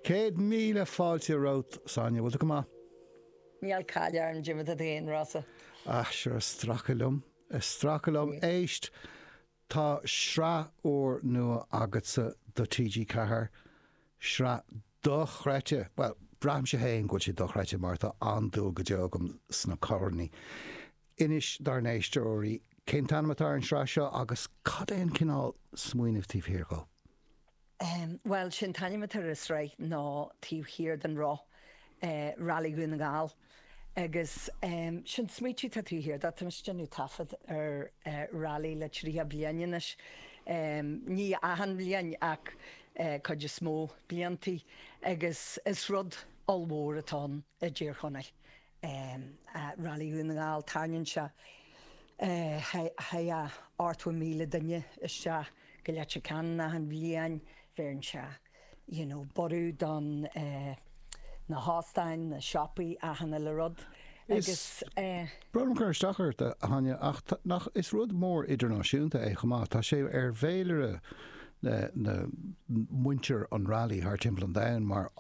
Céad míle fáilte romhat, a Sonia. Bhfuil tú go maith? Níl caill orm, dé mar atá tú fhéin, Rossa? Ah, sure, stracadh liom. Stracadh liom. Éist, tá sraith úr nua agatsa do TG Ceathair. Sraith dochreidte, bhuel, braithimse fhéin go bhfuil sé dochreidte mar tá an-dúil go deo agam sna coirní. Inis dár n-éisteoirí, cén t-ainm atá ar an sraith seo agus cad é an cineál smaoinimh taobh thiar de? Bhuel, sé an t-ainm atá ar an sraith ná Taobh Thiar den Roth, Rally Dhún na nGall. Agus sé an smaoitiú atá taobh thiar de, tá mise ag déanamh taifead ar rally le tríocha bliain anois, ní achan bhliain ach cuid is mó bliantaí agus is rud ollmhór atá ann i dTír Chonaill. Rally Dhún na nGall, tarraingíonn sé ochtó míle duine isteach go Leitir Ceanainn achan bhliain. Bheireann sé you know borradh don na hóstáin, na siopaí achan uile rud agus eh. Brón orm cur isteach ort a Áine ach tá nach is rud mór idirnáisiúnta é chomh maith. Tá sé ar fhéilire na muintir an rally thar timpeall an domhain mar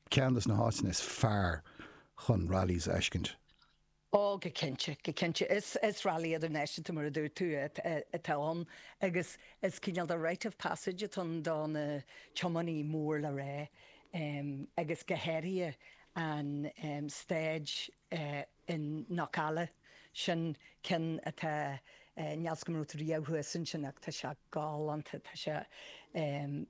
Ceann de na háiteanna is fearr chun rallies a fheiscint. Ó, go cinnte, go cinnte. Is rally idirnáisiúnta, mar a dúirt tú, atá ann agus is cineál de rite of passage atá ann do na tiománaithe mór le rá agus go háirithe an stáid i gCnoc Colbha. Sin ceann atá, níl fhios agam an raibh tú riamh thuas ansin ach tá sé galánta. Tá sé,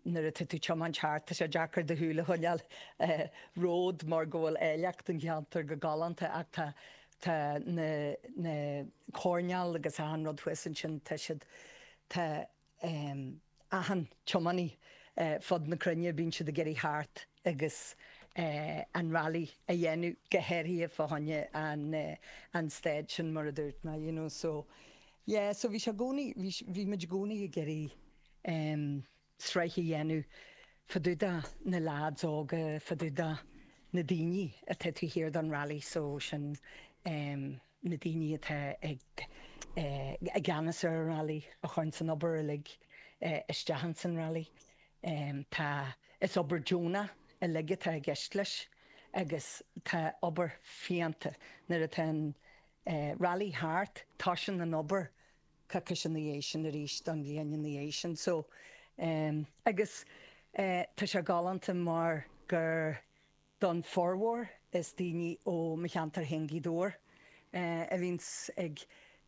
nuair atá tú tiomáint thart, tá sé deacair do shúil a choinneáil ar an ród mar go bhfuil áilleacht an cheantair go galánta ach tá tá na na coirneáil agus achan rud thuas ansin tá siad, tá um achan tiománaí ar fud na cruinne, bíonn siad ag iarraidh theacht agus eh an rally a dhéanamh, go háirithe fá choinne an eh an stáid sin mar a dúirt mé you know so yeah so bhí sé gcónaí, bhí sé, bhí muid i gcónaí ag iarraidh em sraith a dhéanamh fá dtaobh de na lads óga, fá dtaobh de na daoine atá taobh thiar den rally so sin em. na daoine atá i gceannas ar an Rally a chuireann an obair uilig isteach ins an Rally. Tá, is obair deonach uilig atá i gceist leis agus tá obair fiánta, nuair atá an Rally thart tosaíonn an obair coicís ina dhiaidh sin arís don bhliain ina dhiaidh sin so agus tá sé galánta mar gur, Don formhór is daoine ó mo cheantar féin Gaoth Dobhair a bhíonns ag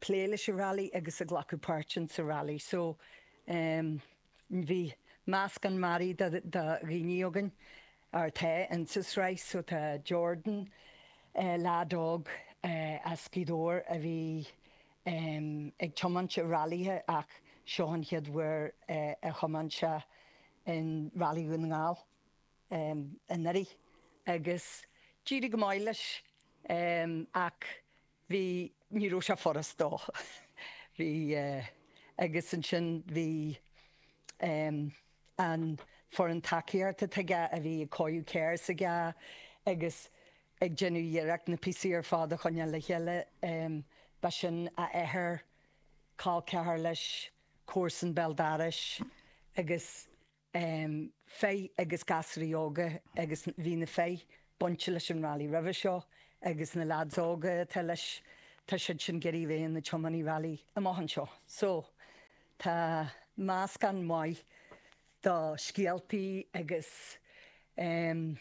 plé leis an rally agus ag glacadh páirt ins an rally so bhí meascán mearaí de dhaoine againn atá ins an sraith so tá Jordan lead óg as Gaoth Dobhair a bhí ag tiomáint i rallythe ach seo an chéad uair a thiomáin sé in Rally Dhún na nGall. anuraidh agus d'éirigh go maith leis ach bhí, ní raibh sé furast dó. Bhí, agus ansin bhí an foireann tacaíochta atá aige a bhí ag cóiriú carr s'aige agus ag déanamh iarracht na píosaí ar fad a choinneáil le chéile. Ba sin a athair, col ceathar leis, comharsan béal dorais agus. um Fei agus gasraí óga agus bhí na Fei bainte leis an Rally roimhe seo agus na leaids óga atá leis tá siad sin ag iarraidh a bheith ina tiománaí Rally amach anseo. So tá meascán maith de scéaltaí agus um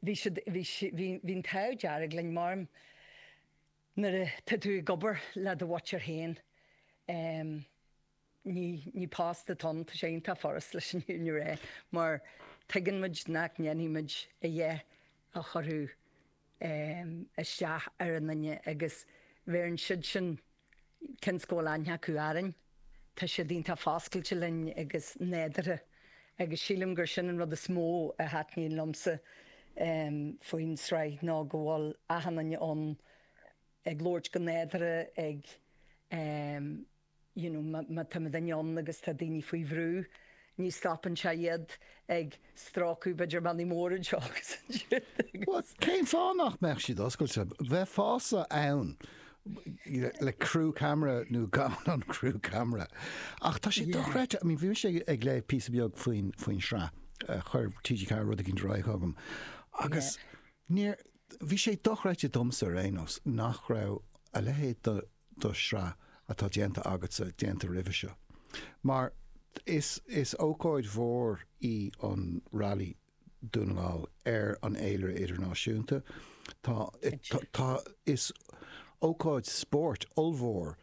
bhí siad bhí bhí bhí an t-ádh dearg linn mar nuair atá tú ag obair le do mhuintir féin um Ní ní post atá ann, tá sé iontach furast leis an fhírinne a rá mar tuigeann muid nach ndéanfaidh muid a dhath a chuirfeadh ehm isteach ar aon duine agus bheireann siad sin cionn go bhfuil aithne acu orainn tá siad iontach foscailte linn agus nádurtha agus sílim gur sin an rud is mó a thaitníonn liomsa ehm faoin sraith ná go bhfuil achan duine ann ag labhairt go nádurtha ag ehm you know, má tá muid ann agus tá daoine faoi bhrú ní stopann sé iad ag stróiceadh b'fhéidir mionnaí móra anseo agus ansiúd agus. Cén fáth nach mbeadh siad oscailte? Bheifeása ann le crew camera nó gan an crew camera. Ach tá sé dochreidte, I mean bhí mise ag léamh píosa beag faoin sraith, chuir TG4 rud éigin ar aghaidh chugam agus níor, bhí sé dochreidte domsa ar aon nós nach raibh a leithéid de, de shraith atá déanta agatsa déanta roimhe seo. Mar is is ócáid mhór í an Rally Dún na nGall ar an fhéilire idirnáisiúnta. Tá tá is ócáid spóirt ollmhór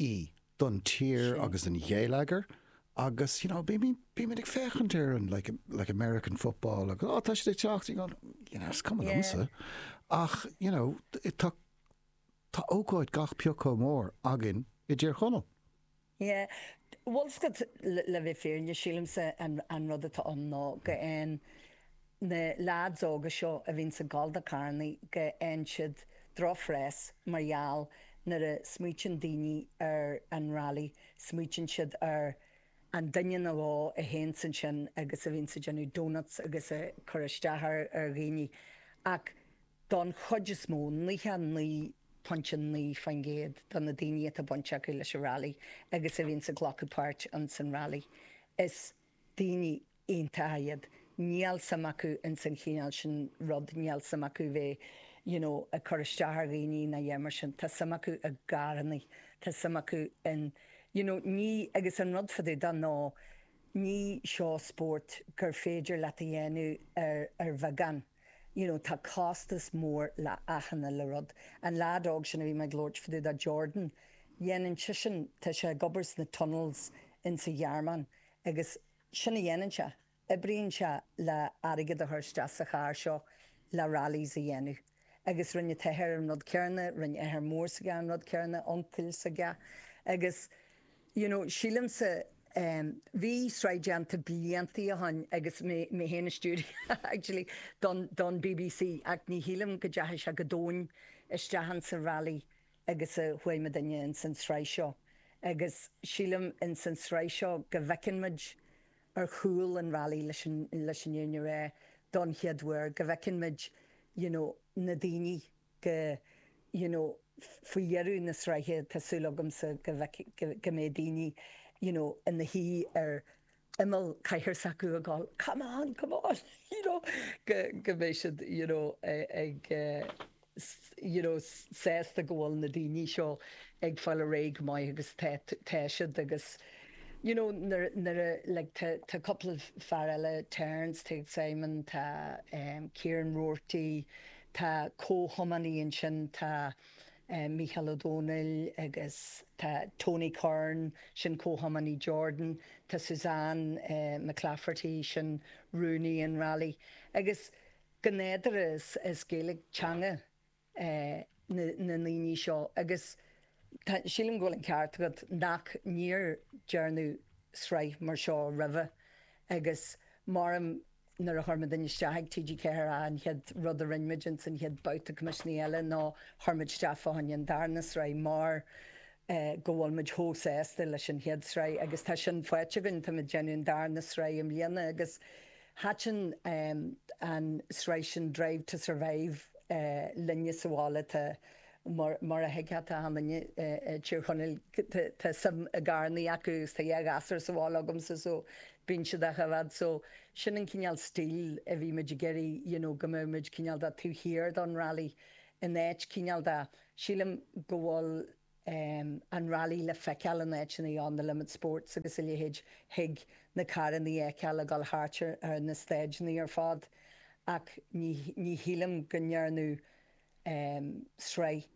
í don tír agus don gheilleagar agus you know, bí bímid ag féachaint ar an like, like American football agus oh, tá siad ag teacht agus you know, cum yeah. ach you know, tá Tá ócáid gach pioc chomh mór againn i dTír Chonaill. Yeah. Bhuel, 's agat, le bheith fírinne, sílimse an rud atá ann ná go bhfaigheann na leaids óga seo a bhíonns ag gabháil do charrannaí go bhfaigheann siad drochphreas mar gheall nuair a smaoiteann daoine ar an rally, smaoiteann siad ar an duine nó dhó a théanns ansin agus a bhíonns ag déanamh doughnuts agus ag cur isteach ar dhaoine ach. Don chuid is mó, 99.9% de na daoine atá baint acu leis an Railí agus a bhíonns ag glacadh páirt ins an Railí, is daoine iontacha iad. Níl suim acu ins an chineál sin rud, níl suim acu bheith you know ag cur isteach ar dhaoine ná a dhath mar sin. Tá suim acu i gcarrannaí, tá suim acu in you know ní, agus an rud fá dtaobh de ná ní seo spórt gur féidir leat a dhéanamh ar bheagán. you know tá costas mór le achan uile rud. An leaid óg sin a bhí mé ag labhairt fá dtaobh de, Jordan, dhéanann seisean tá sé ag obair sna tunnels in sa Ghearmáin agus sin a dhéanann sé oibríonn sé le airgead a chur isteach sa charr seo le rallies a dhéanamh agus rinne an t-athair an rud céarna rinne athair mór s'aige an rud céarna uncail s'aige agus You know, sílimse, em, bhí sraith déanta blianta ó shin agus mé, mé féin a stiúraigh, actually, don, don BBC ach ní shílim go dteachaigh sé chomh domhain isteach ins an Rally agus a chuaigh muidinne ins an tsraith seo agus sílim ins an tsraith seo go bhfeiceann muid ar chúl an Rally leis an, leis an fhírinne a rá don chéad uair, go bhfeiceann muid, you know, na daoine. go, you know faoi dheireadh na sraithe tá súil agamsa go bhfeicfidh, go mbeidh daoine you know ina shuí ar imeall cathaoir s'acu ag gabháil come on, come on you know go, go mbeidh siad you know ag you know sásta go bhfuil na daoine seo ag fáil ar aghaidh go maith agus tá, tá siad agus you know nuair, nuair a like tá, tá cúpla fear eile Terence, Simon, tá eh Kieran Roarty, Tá comhthiománaí ansin, tá Mícheál Ó Domhnaill agus tá Tony Curran, sin comhthiománaí Jordan, tá Suzanne McClafferty, sin rúnaí an railí. Agus go nádúrtha is Gaeilge teanga na ndaoine seo agus sílim go bhfuil an ceart agat nach níor dearnadh sraith mar seo roimhe agus mar a deirim Nuair a chuir muidinne isteach ag TG4 an chéad rud a rinne muid insan chéad babhta coimisiúnaithe eile ná chuir muid isteach fá choinne an darna sraith mar go bhfuil muid chomh sásta leis an chéad sraith agus tá sin faighte againn. Tá muid ag déanamh an darna sraith i mbliana agus thaitin an sraith sin Drive to Survive linne sa bhaile. Tá. Mar a thuigfeá tá an-suim i Tír Chonaill, tá suim i gcarrannaí acu agus tá dhá ghasúr sa bháile agamsa so bíonn siad acu i bhfad so sin an cineál stíl a bhí muid ag iarraidh you know go mbeadh muid cineál do taobh thiar don rally in áit cineál de, sílim go bhfuil ehm an rally le feiceáil in áiteanna on the limit sports agus a leithéid thig na carrannaí a fheiceáil ag dul thart ar na staideannaí ar fad ach ní shílim go ndearnadh sraith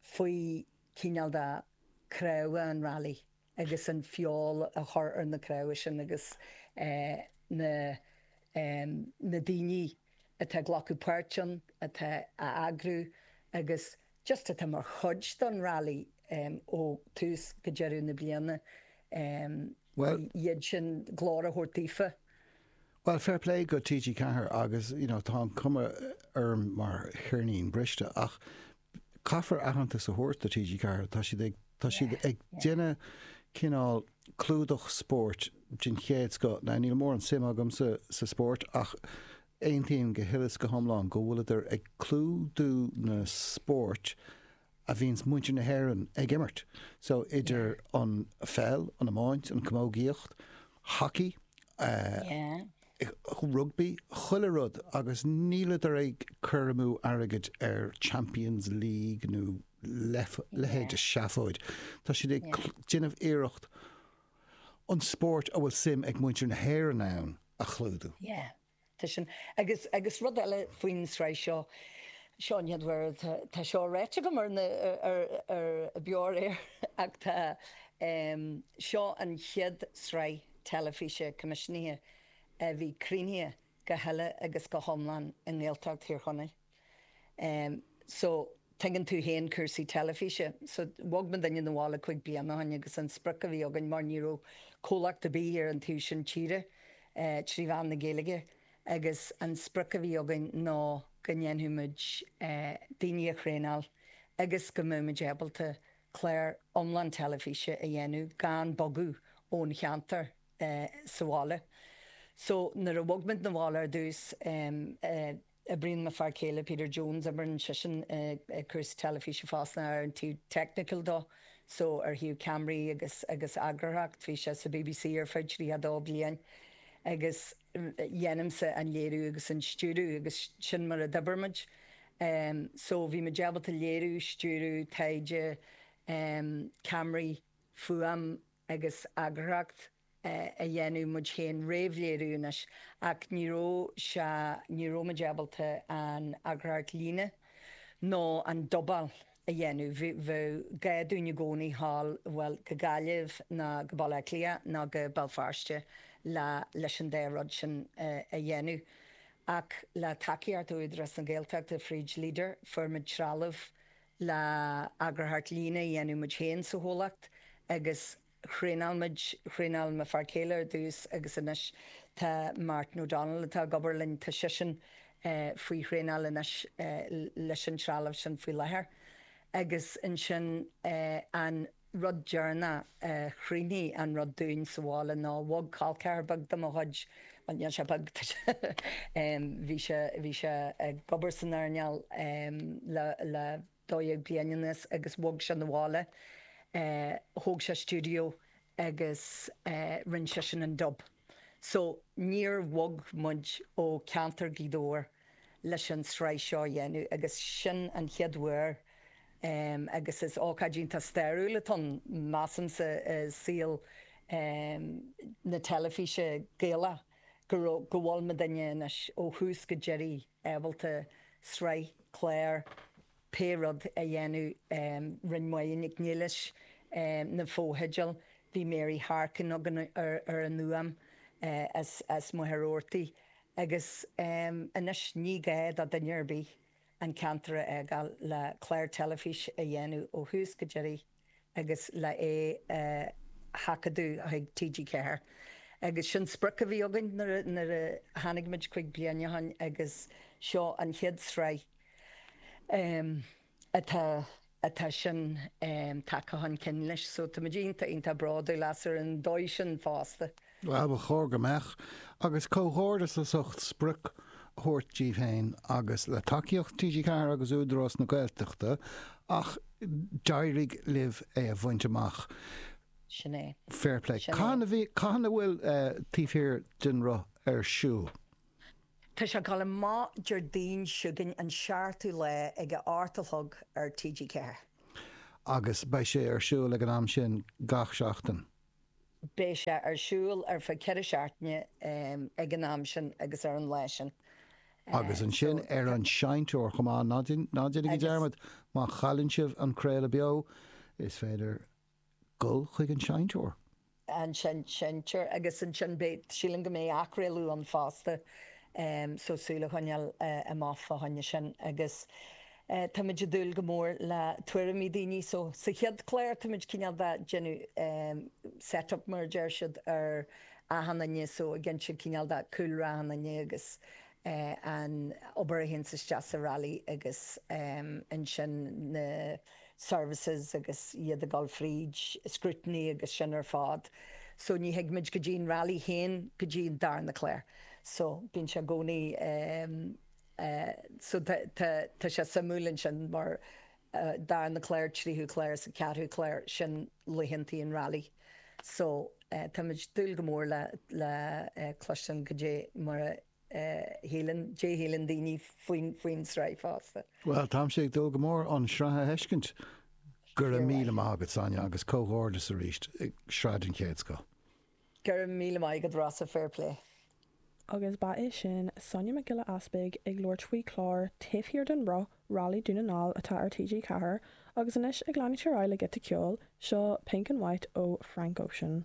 faoi cineál do craobha, an Rally, agus an feoil a chur ar na craobha sin agus na daoine atá ag glacadh páirt ann atá a eagrú agus just atá mar chuid don Rally ó tús go deireadh na bliana iad sin glór a thabhairt daofa. Bhuel fair play go TG4 agus you know tá an cuma orm mar cheirnín briste ach caithfear aitheantas a thabhairt do TG4 tá siad ag déanamh cineál clúdach spóirt den chéad scoth. Now níl mórán suim agam sa sa spóirt ach aontaím go huile is go hiomlán go bhfuileadar ag clúdú na spóirt a bhíonns muintir na hÉireann ag imirt. So idir an pheil, an iomáint, an chamógaíocht, hockey, rugbaí, chuile rud agus níleadar ag cur amú airgid ar Champions League nó leithéid de sheafóid. Tá siad ag déanamh iarracht an spórt a bhfuil suim ag muintir na hÉireann ann a chlúdú. Tá sin. Agus, agus rud eile faoin sraith seo, seo an chéad uair, tá, tá seo ráite agam ar na, ar, ar Beo ar Éigean ach tá, em, seo an chéad sraith teilifíse coimisiúnaithe a bhí críochnaithe go huile agus go hiomlán i nGaeltacht Thír Chonaill. Em so tuigeann tú féin cúrsaí teilifíse. So bhog muidinne 'na bhaile cúig bliana ó shin agus an sprioc a bhí againn, mar ní raibh comhlacht ar bith ar an taobh sin tíre eh trí mheán na Gaeilge agus an sprioc a bhí againn ná go ndéanfadh muid eh daoine a thraenáil agus go mbeadh muid ábalta clár iomlán teilifíse a dhéanamh gan bogadh ón cheantar eh sa bhaile. So nuair a bhog muid 'na bhaile ar dtús em eh. Oibríonn m'fhear céile Peter Jones, oibríonn seisean i cúrsaí teilifíse fosta ar an taobh technical dó, so ar thaobh ceamraí agus agus eagarthóireacht. Bhí sé sa BBC ar feadh 22 bliain agus ghnímse an léiriú agus an stiúradh agus sin mar a d'obair muid. So bhí muid ábalta léiriú, stiúradh, taighde, ceamraí, fuaim agus eagarthóireacht. a dhéanamh muid féin réamhléiriú anois ach ní raibh sé, ní raibh muid ábalta an eagarthóireacht líne nó an dobáil a dhéanamh. Bheadh gá dúinn i gcónaí a ghabháil, bhuel, go Gaillimh nó go Baile Átha Cliath nó go Béal Feirste le, leis an dá rud sin a dhéanamh. Ach le tacaíocht Údarás na Gaeltachta fríd Leader, fuair muid trealamh le eagarthóireacht líne a dhéanamh muid féin sa chomhlacht agus thraenáil muid, thraenáil mo fhear céile ar dtús agus anois tá Martin O'Donnell atá ag obair linn, tá seisean faoi thraenáil anois leis an trealamh sin faoi láthair. Agus ansin an rud deireanach a chruinnigh an rud dúinn sa bhaile ná bhog col ceathair beag de mo chuid, bhuel níl sé beag, tá sé, bhí sé, bhí sé ag obair san earnáil le, le, 12 bliain anuas agus bhog sé 'na bhaile. Thóg sé stiúideo agus rinne seisean an dub. So, níor bhog muid ó ceantar Ghaoth Dobhair leis an sraith seo a dhéanamh agus sin an chéad uair agus is ócáid iontach stairiúil atá ann, measamsa, i saol na teilifíse Gaelach go bhfuil muidinne anois ó thús go deireadh. ábalta sraith, clár, pé rud a dhéanamh Rinne Máine Nic Niallais na fotheidil Bhí Mary Harkin againn ar an fhuaim as Machaire Rabhartaigh agus anois ní gá do dhuine ar bith an ceantar a fhágáil le clár teilifís a dhéanamh ó thús go deireadh agus le é a sheachadadh chuig TG4. Agus sin sprioc a bhí againn nuair a tháinig muid cúig bliana ó shin agus seo an chéad sraith atá atá sin tagtha chun cinn leis. So tá muid iontach, iontach bródúil as ar an dóigh sin fosta. Ba chóir go mbeadh, agus comhghairdeas as ucht sprioc a thabhairt díbh féin agus le tacaíocht TG4 agus Údarás na Gaeltachta ach d'éirigh libh é a bhaint amach. Sin é. Fair play. Sin é. Cathain a bhí, cathain a bhfuil eh, taobh thiar den roth ar siúl? Tá sé ag gabháil amach Déardaoin chugainn an seachtú lá ag a hocht a chlog ar TG4. agus beidh sé ar siúl ag an am sin gach seachtain. Beidh sé ar siúl ar feadh ceithre seachtaine ag an am sin agus ar an lá sin. Agus ansin ar an seinnteoir chomh maith. Ná déanaigí dearmad, má chailleann sibh an craoladh beo, is féidir dul chuig an seinnteoir. an seinnteoir agus ansin beidh, síleam go mbeidh athchraoladh ann fosta, so súil a choinneáil amach fá choinne sin. Agus. Táimid ag dúil go mór le tuairimí daoine so sa chéad clár táimid cineál de ag déanamh set up mar a deir siad ar achan duine so ag insint cineál de cúlra achan duine agus an obair a théann isteach sa rally agus ansin na services agus iad ag dul fríd scrutiny agus sin ar fád so ní thigimid go dtí an rally féin go dtí an darna clár so bíonn sé i gcónaí so tá sé suimiúil ansin mar darna clár tríú clár is an ceathrú clár sin laethanntaí an rally so táimid ag dúil go mór le cloistean goidé mar a shíleann goidé shíleann daoine faoin sraith fosta. Bhuel táimse ag dúil go mór an sraith a fheiscint. Go raibh míle maith agat Sonia agus comhghairdeas arís sraith den chéad scoth. Go raibh míle maith agat Rossa, fair play. Agus ba í sin Sonia Nic Giolla Easpaig ag labhairt faoi chlár Taobh Thiar den Roth, Rally Dún na nGall atá ar TG4, agus anois ag leanúint ar aghaidh le giota ceoil, seo Pink and White ó Frank Ocean.